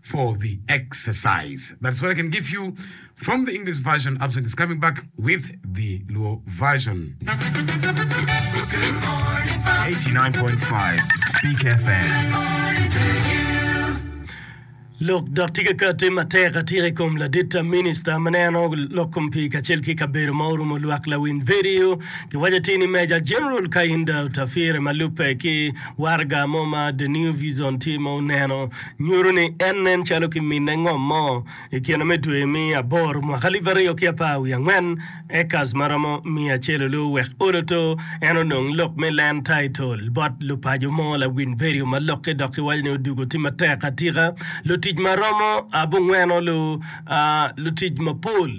for the exercise that's what I can give you from the English version absent is coming back with the Luo version 89.5 Speak FM. Lok dok tye ka kati matek atika i kom ladit minista ma neno lok kom pii kacel ki kabedo ma orumo lwak lawiny vidio kiwaco ti ni Meja Jeneral Kahinda Otafire ma lubbe ki waraga mo ma The New Vision tye ma oneno Nyuto ni en nen calo kiminne ngom mo i kine me dwe me aboro mwaka alip aryo ki apar wiye angwen, acres ma romo miya acel olu wek olo to en onong lok me land title bot lupaco mo lawiny vedio ma lokke dok kiwaco ni odwogo tye matek atika lutic ma romo abongwen olu lutic mapol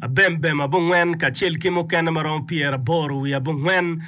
abembem abongwen kacel ki mukene ma romo pyeraboro wiye abongwen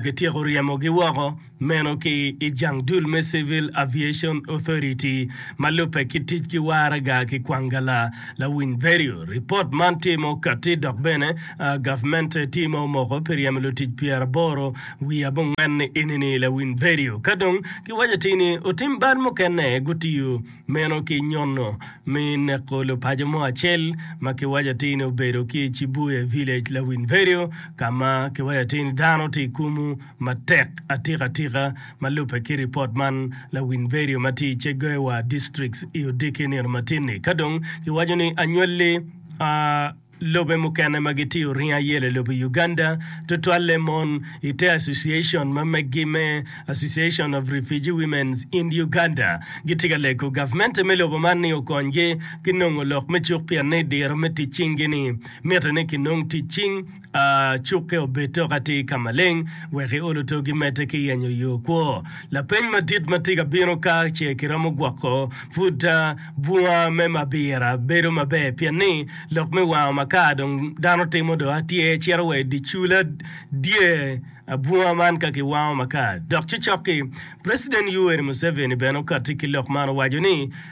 kityeko ryemogi woko. Meno ki i jang dul me Civil Aviation Authority ma lubbe ki ticgi waraga ki kwangala. Lawiny Verio, Ripot man tye ma okatti dok bene gavmente tye ma omoko pi ryemo lutic pyeraboro wiye abongwen ni enini Lawiny Verio. Ka dong giwaco atir ni otim bal mukene gutiyo meno ki nyono me neko lupaco mo acel ma kiwaco atir ni obedo ki i Chibuye Village, Lawiny Verio ka ma kiwaco atir ni dano tye i kumu. matek atikatika ma lubbe ki ripot man, lawiny vedio ma tye i Cheguewa Districts i odiki nino matin-ni. Ka dong giwaco ni anywalli a lobe mukene ma gitiyo ringo ayelo i lobo Uganda, tutwalle mon i te association ma meggi me Association of Refugee Women's in Uganda, gitye ka lego gavmente me lobo man ni okonygi ginongo lok me cuk pienni diro me tic cing-gi-ni miti ni kinong tic cing. a cukke obed tok atir ka maleng wek iolo togi mete ki yenyo yo kwo. Lapeny madit ma tye ka bino ka ce kiromo gwoko pud bunga me mabira bedo maber pien ni lok me wango ma ka dong dano timo dong atyer cito wa i dye cula dye bunga man ka kiwango ma ka dok cocok-ki. President Yoweri Museveni bene okatti ki lok man owaco ni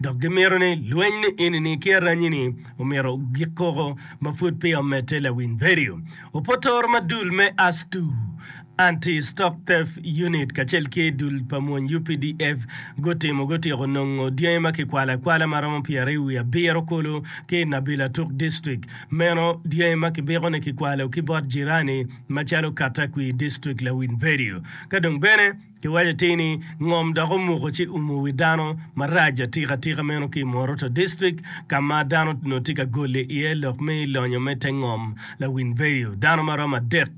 dok gimito ni lweny ni eni-ni ki aranyi-ni omyero ogik koko ma pud peya omedde lawiny vedio. Opotoro ma dul me ASTU, Anti Stock Theft Unit, kacel ki dul pa mony UPDF gutimo gutyeko nongo dyangi ma kikwalo akwala ma romo pyeraryo wiye abiro kulu ki i Nabil Atuk District, meno dyangi ma kibiko ni kikwalo ki bot jirani macalo Katakwir District lawiny vedio. Ka dong bene. Giwaco atir ni ngom dok omuko ci umo wi dano marac atikatika meno ki i Moroto District ka ma dano onongo tye ka goli iye lok me lonyo me te ngom lawiny vedio. Dano ma romo adek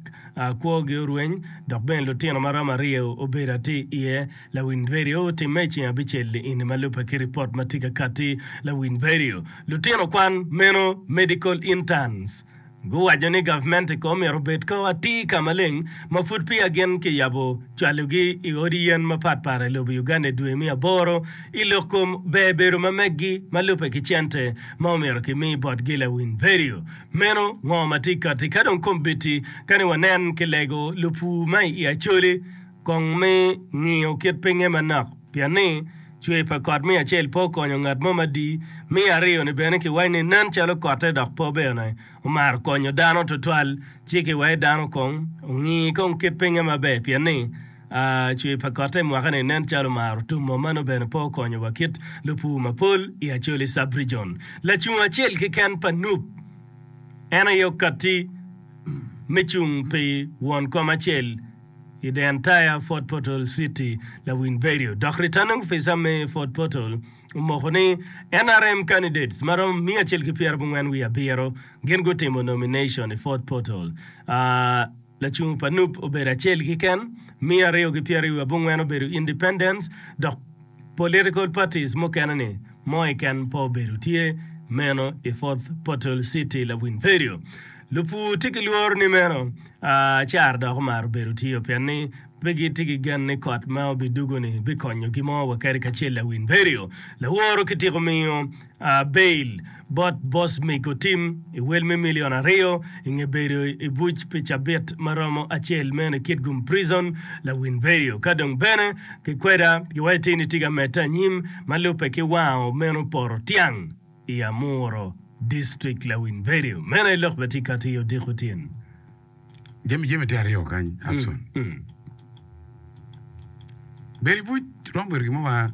kwogi orweny dok bene lutino ma romo aryo obedo atir iye. Lawiny vedio otimme i ceng abicel liini ma lubbe ki ripot ma tye ka katti. Lawiny vedio lutino kwan meno medical interns. Guwaco ni gavmente ko myero obed ka atir ka maleng ma pud peya gin kiyabo cwalogi i odi yen mapat pat i lobo Uganda i dwe me aboro i lok kom ber bedo ma meggi ma lubbe ki cente ma omyero ki mi botgi lawiny vedio meno ngo ma tye kati ka dong kombeddi kani wanen ki lego lupur ma i Acholi Kong mi ngiyo kit pinye manok, pien ni cwer pa kot me acel pe okonyo ngat mo madi, me aryo-ni bene kiwaco ni nen calo kotte dok pe bene omaro konyo dano tutwal, ci kiwaco dano kong ongi kong kit pinye maber, pien ni cwer pa kotte i mwaka-ni nen calo omaro tumo, mano bene pe okonyo wa kit lupur mapol i Acholi Sub-Rijon. Lacung acel keken pa Nup en aye okatti me cung pi won kom acel, I The Entire Fort Portal City, Lawiny Verio, dok Returning Officer me Fort Portal, omoko ni NRM candidates ma romo miya acel ki pyera abongwen wiye abiro gin gutimo nomination i Fort Portal. Lacung pa nup obedo acel keken, miya aryo ki pyera wiye abongwen obedo independents, dok political parties mukene ni mo keken pe obedo tye meno i Fort Portal City, Lawiny Verio. Lupur tye ki lworo ni meno caro dok omaro bedo tiyo pien ni pe gitye ki gen ni kot ma obidugo-ni bikonyogi mo wa kadi kacel. Lawin Berio, laworo kitiko miyo bail bot Bosmic otim i wel me milion aryo i nge bedo i buc pi cabit ma romo acel meno i Kitgum Prison, Lawin Berio. Ka dong bene kikweda, giwaco tir ni tye ka medde anyim ma lubbe ki wango meno poto tyang. I Amuro district lawiny vedio meno aye lok bene tye ka tiyo odiko tyen. Jami jami tye aryo kany Abson. Bedo ibuc romo bedo gin mo ma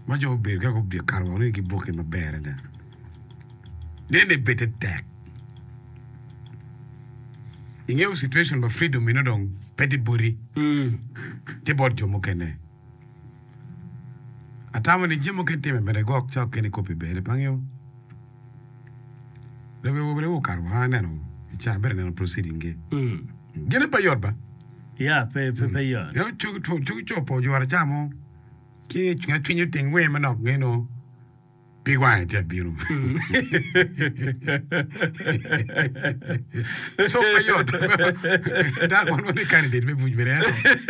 ma jo gubedo ka gubikato woko ni giboke maber adada. Nene bede tek. Ingeyo situation pa freedom meno dong pe tye boti. Tye bot jo mukene. Atamo ni jami mukene timme bene gwok cok kene kop i bene pangio. Lobe wa bene okato woko aneno i ca abedo neno proceeding gi. Gine pe yot ba. Ya pe pe pe yo. Yo cuk cuk cuk cuk po jora ca mo. Ki nga cwinyo ting wer manok ngeno. Pi wange tye bino. Cuk pe yot. Dako man wani candidate me buc bene ento.